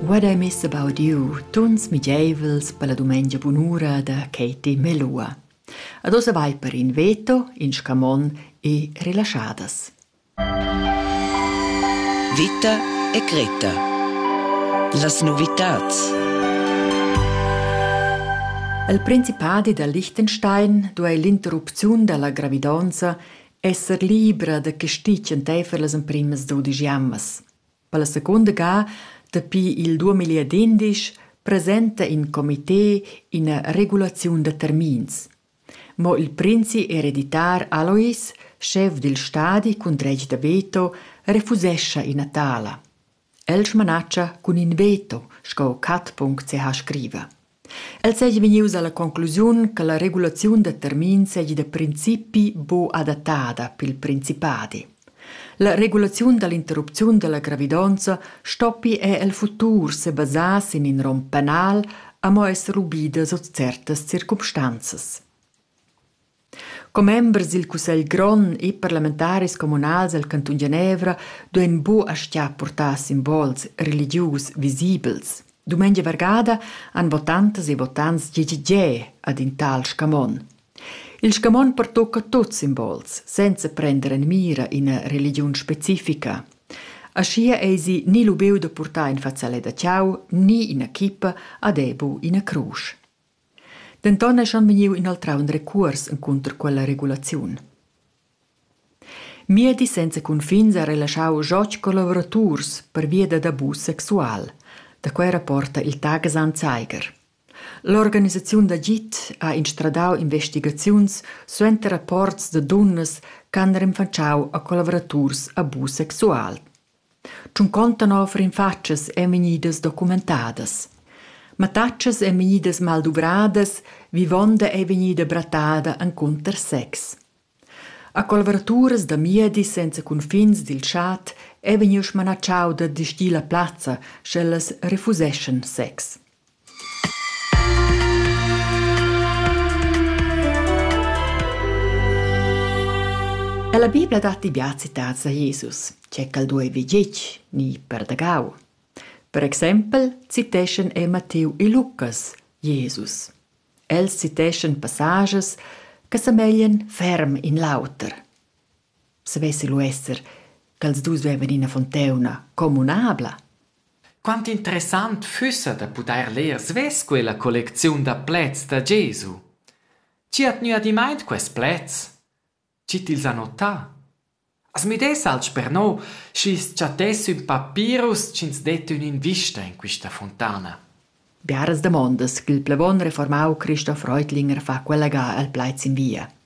Vad ei mess abaudiu tuns migeivels per la dumengia bunura da Katie Melua. Ad ossa vai per in veto, in scamon e rilaschadas. Vita e Greta. Las novitats. El principadi da Liechtenstein duei l'interrupziun dalla gravidonza esser libra da castig enteifer las emprimas dudisch jammas. Per la secunda ga, dapi il 2011, presenta in comité ina regulaziun da termins. Mo il princi ereditar Alois, schef dil stadi cun dretg da veto, refusescha ina tala. El smanatscha cun in veto, sco Cat.ch seha scriva. El seigi vegnius alla conclusiun che la regulaziun da termins seigi da principi buc adattada pil principadi. La regulaziun dall'interrupziun dalla gravidonza stoppi er el futur sebasar sin in rom penal, amo esser ubida sut certas circumstanzas. Commembers dil cussegl grond e parlamentaris communals el cantun Genevra duein buca aschia purtar simbols religius visibels. Dumengia vargada han votantas e votants gie gie gie ad in tal scamon. Il scamon pertucca tuts simbols, senza prender en mira ina religiun specifica. Aschia eisi ni lubiu da purtar in fazzalet da tgau ni ina chippa ad ebu ina crusch. Denton eschan vegniu inoltrau in recuors encunter quella regulaziun. Miedi senza cunfins ha relaschau Joch co lavoraturs pervia dad abus sexual. Da quei rapporta il Tagesan Zeiger. L'organisaziun d'agid ha instradau investigaziuns suenter rapports da dunnas ch'han renfatschau a collavuraturs abus sexual. Tschunconta nov rinfatschas ein vegnidas documentadas. Mattatschas ein vegnidas malduvradas, vivonda ei vegnida brattada encunter sex. A collaboraturas da miedi senza cunfins dil chat ei vegniu smanatschau da distir la plazza, sch'ellas refuseschan sex. La Bibla dat bia citats a Jesus, che quel duevi gitg ni perdagau. Per exempel citeschan er Mattiu e Lucas Jesus. Els citeschan passages che semeglien ferm in l'auter. savessi lu esser ch'els dus duevan ina fonteuna communabla. Quant interessant fussa da pudair leer svess quella collecziun da pleds da Gesu. Chi ha tgnü adimaint quest pleds? Chi t'ils ha notà? As müdess alch per no, schi's chattess ün papirus chi'ns det ün'invista in quista fontana. Biaras damondas ch'il plevon reformau Christoph Reutlinger fa quella ga al plaids in via.